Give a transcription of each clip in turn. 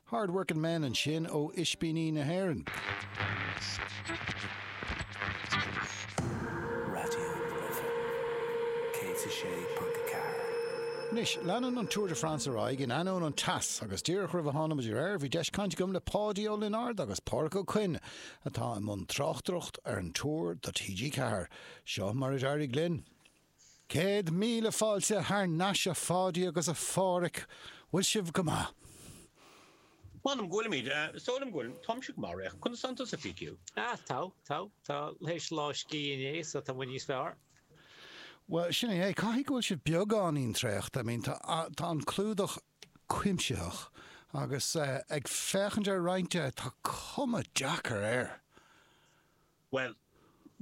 Hard Working Men ansin ó Ispíní na hÉireann. Raidió na Life 106.4. Anois, leanann an Tour de France ar aghaidh in ainneoin an teas agus díreach roimh a tháinig muid ar aer bhí deis cainte agam le Páidí Ó Lionáird agus Pádraic Ó Cuinn atá i mbun tráchtaireacht ar an Tour do TG4. Seo mar a d'éirigh linn. Céad míle fáilte thar n-ais a Pháidí agus a Phádhraic, bhfuil sibh go maith? M'anam go bhfuilimid, is dóigh liom go bhfuil, táimse go maith, Réics, conas tánn tusa PQ? Ah, tá, tá, tá, théis lá scíth inné so tá muid níos fearr. Bhuel, sin é é, caithfidh go bhfuil sibh beagáinín traochta, I mean tá, tá an clúdach cuimsitheach agus eh ag féachaint ar roinnt de, tá cuma deacair air! Bhuel,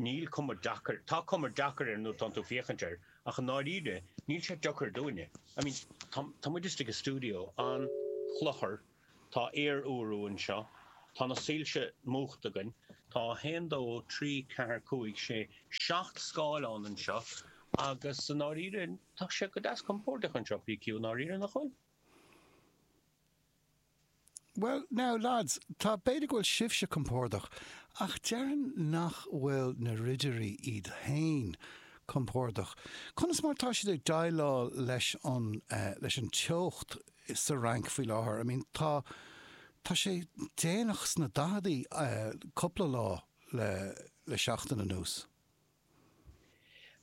níl cuma deacair, tá cuma deacair air nuair atánn tú ag féachaint air, ach i ndáiríre, níl sé deacair dúinne. I mean, tá, tá muid istigh i stiúideo an-chluthar, tá aer-úrú anseo, tá na soilse múchta againn, tá a haon, dó, trí, ceathair, cúig, sé, seacht scáileán anseo agus i ndáiríre, tá sé go deas compóirdeach anseo, PQ, i ndáiríre, nach bhfuil? Bhuel, now lads, tá, b'fhéidir go bhfuil sibhse compordach, ach déarfainn nach bhfuil na ridirí iad féin compordach. Conas mar atá siad ag déileáil leis an, leis an teocht sa Fhrainc faoi láthair? I mean, tá, tá sé déanach sna daicheadaí, cupla lá le, le seachtain anuas.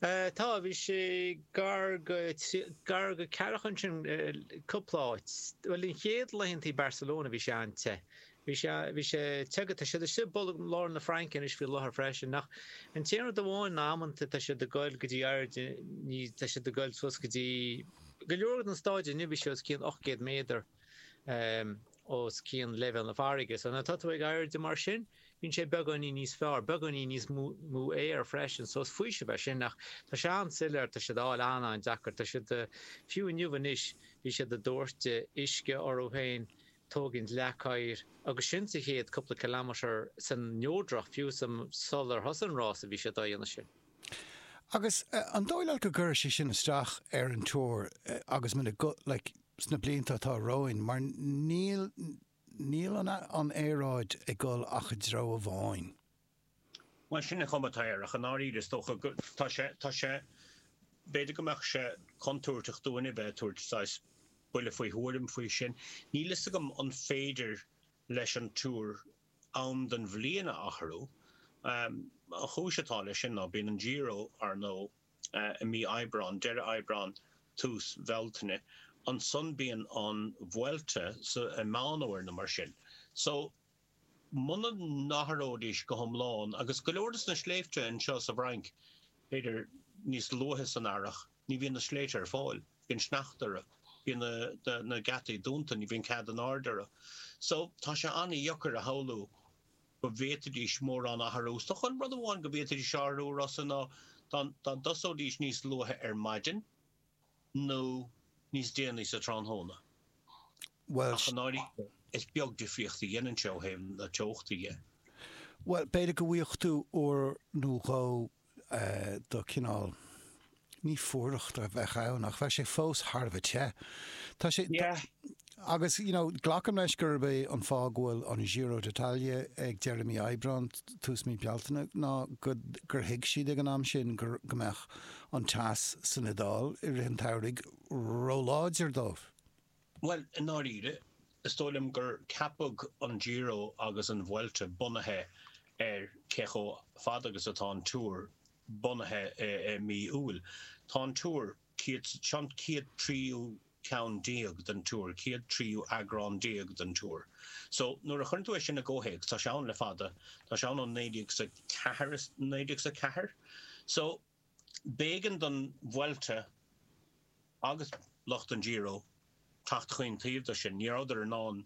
Tá, bhí sé gar go, gar go ceathracha ansin, cúpla áit. Bhuel, an chéad laethanta i Barcelona bhí sé an-te, bhí sé, bhí sé te go, tá siad istigh i mbolg lár na Fraince anois faoi láthair freisin ach an t-aon rud amháin ná amanta tá siad ag goil go dtí airde, ní, tá siad ag goil suas go dtí, go leor den staid inniu bhí sé os cionn ocht gcéad méadar, os cionn leibhéal na farraige, so nuair atá tú ag airde mar sin, Bíonn sé beagáinín níos fearr, beagáinín níos mó aeir freisin, so is faoiseamh é sin, ach tá sé an-soiléir, tá siad á fháil an-an-deacair, tá siad, fiú inniu anois, bhí siad a' dóirteadh uisce orthu féin, tógaint leac oighir, agus sin sa chéad cúpla kilometre, san neodrach, fiú sa, sular thosaigh an rása, bhí siad á dhéanamh sin. Agus an dóigh leat go gcuirfidh sé sin isteach ar an tour agus muna, like, sna blianta atá romhainn, mar níl, Níl an aeráid ag dul ach i dtreo amháin. Mar sin an chuma atá air, ach i ndáiríre, is dócha go, tá sé, tá sé, b'fhéidir go mbeadh sé contúirteach dúinn a bheith ag tabhairt saghas buille faoi thuairim faoi sin. Níl fhios agam an féidir leis an Tour am den bhliain a athrú. An chúis atá leis sin ná bíonn an Giro, ar ndóigh, i mí Aibreáin, deireadh Aibreáin, tús Bhealtaine, ansan bíonn an Vuelta so i Meán Fhómhair nó mar sin. So, muna n-athróidís go hiomlán, agus go leor des na sléibhte anseo sa bhFrainc, b'fhéidir, níos luaithe san earrach, ní bhíonn na sléibhte ar fáil, bíonn sneachta orthu, bíonn na geataí dúnta, ní bhíonn cead in airde orthu. So, tá sé ana-dheacair a shamhlú go bhféadfaidís mórán a athrú. Is dócha, an rud amháin go bhféadfaidís a athrú, a Rossa, ná dá dtosóidís níos luaithe ar maidin, nó níos déanaí sa tráthnóna. Bhuel. Ach i ndáiríre, is beag difríocht a dhéanann sé ó thaobh na teochta dhe. Bhuel, b'fhéidir go bhfuigheadh tú uair nó dhó de chineál, ní fuaireacht a bheadh ann ach bheadh sé fós thar a bheith te. Tá sé, agus you know glacaim leis gurb é an fáth go bhfuil an Giro d'Italia ag deireadh mí Aibreán, tús mí Bealtaine ná gur thuig siad ag an am sin go mbeadh an teas san Iodáil i rith an tsamhraidh róláidir dóibh. Bhuel, i ndáiríre, is dóigh liom gur ceapadh an Giro agus an Vuelta bunaithe ar cé chomh fada agus atá an Tour bunaithe i mí Iúil. Tá an Tour, céad, 'sé an céad tríú ceann déag den Tour, céad tríú eagrán déag den Tour. So, nuair a chuireann tú é sin i gcomhthéacs, tá sé ann le fada, tá sé ann ó naoi déag 's a ceathair, is naoi déag 's a ceathair? So. B'éigean don Vuelta agus lucht an Giro teacht chaon taobh de sin, ní rabhadar in ann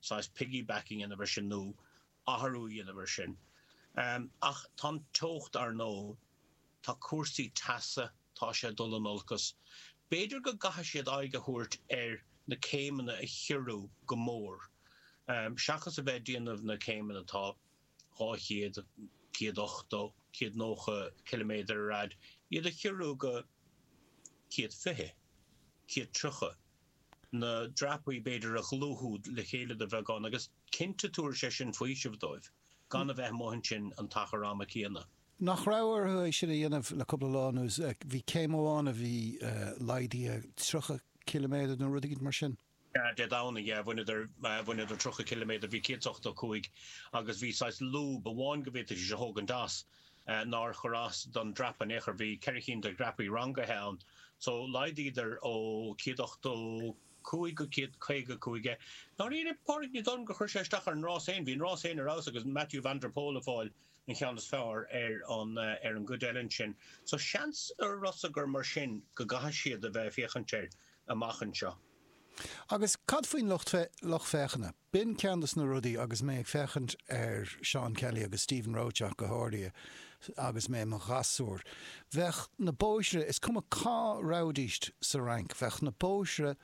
saghas piggyback a dhéanamh ar sin nó athrú a dhéanamh ar sin. Ach tá an teocht, ar ndóigh, tá cúrsaí teasa, tá sé ag dul in olcas. B'fhéidir go gcaithfidh siad aghaidh a thabhairt ar na céimeanna a chiorrú go mór seachas a bheith ag déanamh na gcéimeanna atá 200, 180, 190 ciliméadar ar fhad, iad a chiorrú go 120, 130, na dreapaí b'fhéidir a dhlúthú le chéile de bheagán agus cinnte tabharfaidh sé sin faoiseamh dóibh gan a bheith amuigh ansin an t-achar ama céanna. Nach raibh orthu é sin a dhéanamh le cúpla lá anuas? Bhí céim amháin a bhí laghdaithe 30 ciliméadar nó rud eicínt mar sin. Dé Domhnaigh, yeah, bhaineadar, bhaineadar tríocha ciliméadar, bhí céad is ochtó a cúig agus bhí saghas lúb amháin go bhféadfaidís a thógaint as, nár chuir as don dreapadh in aon chor, bhí ceithre chinn de dhreapaí rangaithe ann, so laghdaíodar ó céad ochtó cúig go céad caoga a cúig é. I ndáiríre ní dóigh liom gur chuir sé isteach ar an rás féin, bhí an rás féin ar fheabhas agus Mathieu van der Poel ag fáil an cheann is fearr ar an, ar an gcuid eile ansin. So seans, a Rossa, gur mar sin go gcaithfidh siad a bheith ag féachaint air. amach anseo. Agus cad faoin lucht féachana? B'in ceann de na rudaí, agus mé ag féachaint ar Seán Kelly agus Stephen Roche ach go háirithe, agus mé i mo ghasúr, bheadh na bóithre, is cuma cá rabhaidíst sa Fhrainc, bheadh na bóithre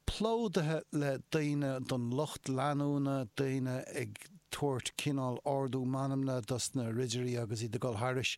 plódaithe le daoine den lucht leanúna, daoine ag tabhairt cineál ardú meanmna dos na ridirí agus iad ag dul thairis.